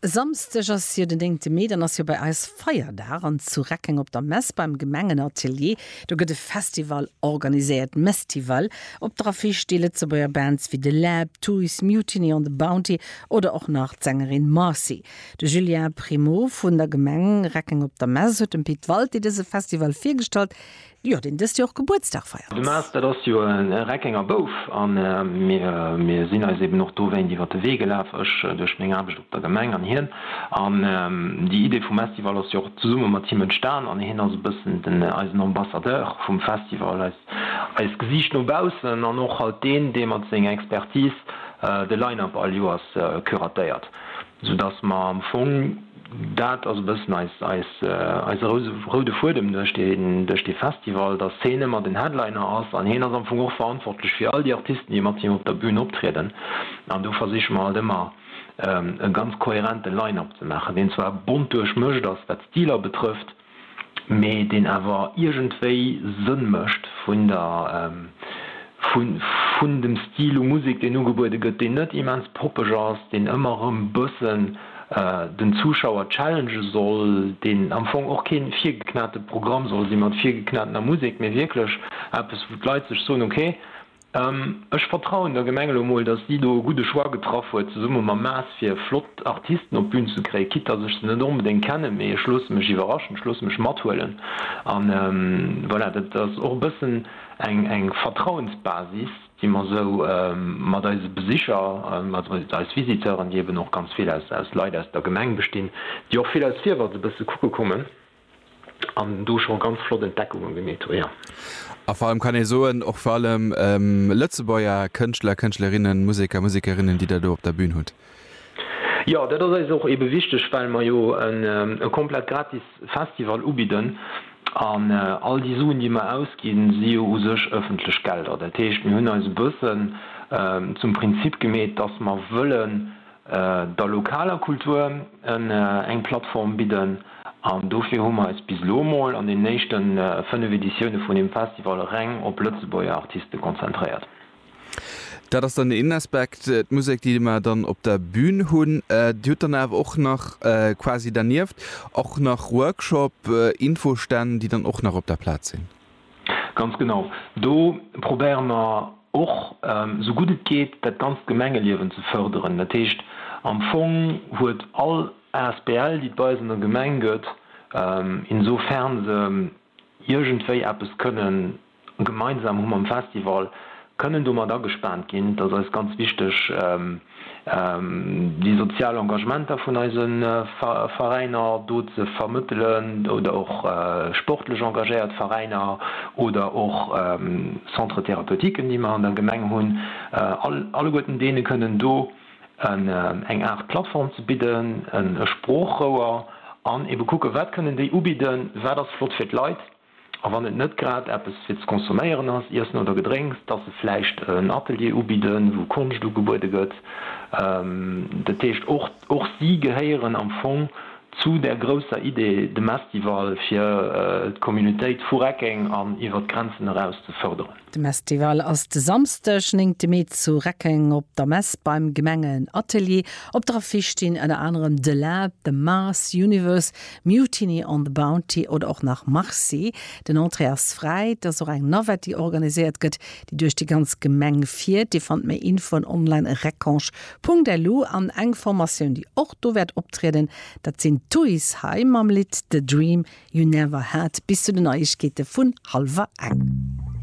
Samsdeg ass jo den 9 Mee, dann ass jo bei eis Feierdag an zu Reckeng op der Mess beim Gemengenatelier, do gëtt e Festival organiséiert, Mestival. Op der Affiche sti Lëtzebuerger Bands wéi The Lab, Tuys, Mutiny on the Bounty oder och nach d'Sängerin Marcy. De Julien Primo vun der Gemeng Reckeng op der Mess huet dem Pit Walté dëse Festival virgestallt, Jo, deen dëst Joer Gebuertsdag feiert. De Maas, dat ass jo e Reckenger Bouf a mir sinn eis eben och dowéint iwwer de Wee gelaf, ech duerch meng Aarbecht op der Gemeng an hien. An déi Idee vum Estival ass jo och zesumme mat him entstan an hien ass e bëssen den, eisen Ambassadeur vum Festival, eis, eist Gesiicht no baussen an och halt deen, dee mat senger Expertise de Line-Up all Joers curatéiert. Sou dass mer am Fong, dat ass e bëssen eise roude Fuedem duerch dee Festival, dass hien ëmmer den Headliner ass an hien ass am Fong och verantwortlech fir all déi Artisten, déi mat him op der Bün optrieden. An do versiche mer halt ëmmer e ganz kohärente Line-up ze maachen, deen zwar bont duerchmëscht ass, wat d'Stiler betrëfft, mee deen awer iergendwéi Sënn mécht vun der, vun dem Stil u Musek, deen ugebuede gëtt, deen net immens poppeg ass, deen ëmmer erëm bëssen den Zuschauer challengen soll, deen am Fong och keen virgeknate Programm soll sinn mat virgeknatener Musek, mee wierklech eppes, wou d'Leit sech soen, ok, Ech vertrauen der Gemeng elo mol, dass si do e gudde Choix getraff huet zesumme mam Maas fir flott Artisten op d'Bün ze kréien, quitte dass ech se net onbedéngt kennen, mee ech loosse mech iwwerraschen, ech loosse mech mathuelen an voilà. Dat ass och e bëssen eng Vertrauensbasis, déi mer esou mat eise Besicher, also mat eis Visiteuren, déi eben och ganz vill aus Leit aus der Gemeng bestinn, déi och vill aus Fiewer se bësse kucke kommen. an do scho ganz flott Entdeckungen gemeet hu jo. A vor allem kann ee soen, och vor allem Lëtzebuerger Kënschtler, Kënschtlerinnen, Museker, Musekerinnen, déi Der do op der Bühn hutt. Jo, dat ass eis och ebe wichteg, well mer jo e komplett gratis Festival ubidden an all déi Suen, déi mer ausginn, si jo u sech ëffentlech Gelder. Dat heescht, mir hunn eis e bëssen zum Prinzip gemeet, dass mer wëllen, der lokaler Kultur eng Plattform bidden an dofir hu mer eis bis elo emol an den éischte 5 Editioune vun dem Festival reng op Lëtzebuerger Artiste konzentréiert. Dat ass dann den een Aspekt, d'Musek déi mer dann op der Bün hunn. Dir hutt dann awer och nach quasi dernieft och nach Workshop, Infostänn déi dann och nach op der Plaz sinn? Ganz genau. Do probéiere mer och, esou gutt et geet, dat ganzt Gemengeliewen ze fërderen. Dat heescht, am Fong huet all Asbl, déi et bei eis an der Gemeng gëtt, insofern se iergendwéi eppes kënnen gemeinsam hu mam Festival, kënnen domat agespaant ginn. Dat ass eis ganz wichteg. Déi sozial Engagementer vun eise Veräiner do ze vermëttelen oder och sportlech engagéiert Veräiner oder och Centres thérapeutiques, déi mer an der Gemeng hunn, alleguerten deene kënnen do eng Aart Plattform ze bidden, e Sproochrouer an ebe kucken, wat kënnen déi ubidden, wat ass flott fir d'Leit, A wann et net grad eppes fir ze consomméieren ass, Iessen oder Gedrénks, dass se vläicht en Atelier ubidden, wou Konscht ugebuede gëtt. Dat heescht, och, och si gehéieren am Fong zu där grousser Idee, dem Estival, fir d'Communautéit vu Reckeng an iwwert d'Grenzen eraus ze fërderen. De Mestival ass de Samsdeg, néngte Mee zu Reckeng op der Mess beim Gemengenatelier. Op der Affiche stinn ënner anerem The Lab, The Mars Universe, Mutiny on the Bounty oder och nach Marcy. Den Entrée ass fräi. Et ass och eng Navette, déi organiséiert gëtt, déi duerch déi ganz Gemeng fiert. Dir fannt méi Infoen online, recanche.lu. An eng Formatioun, déi och do wäert optrieden, dat sinn d'Thuishaie mam Lidd The Dream You Never Had bis zu den Neiegkeete vun hallwer eng.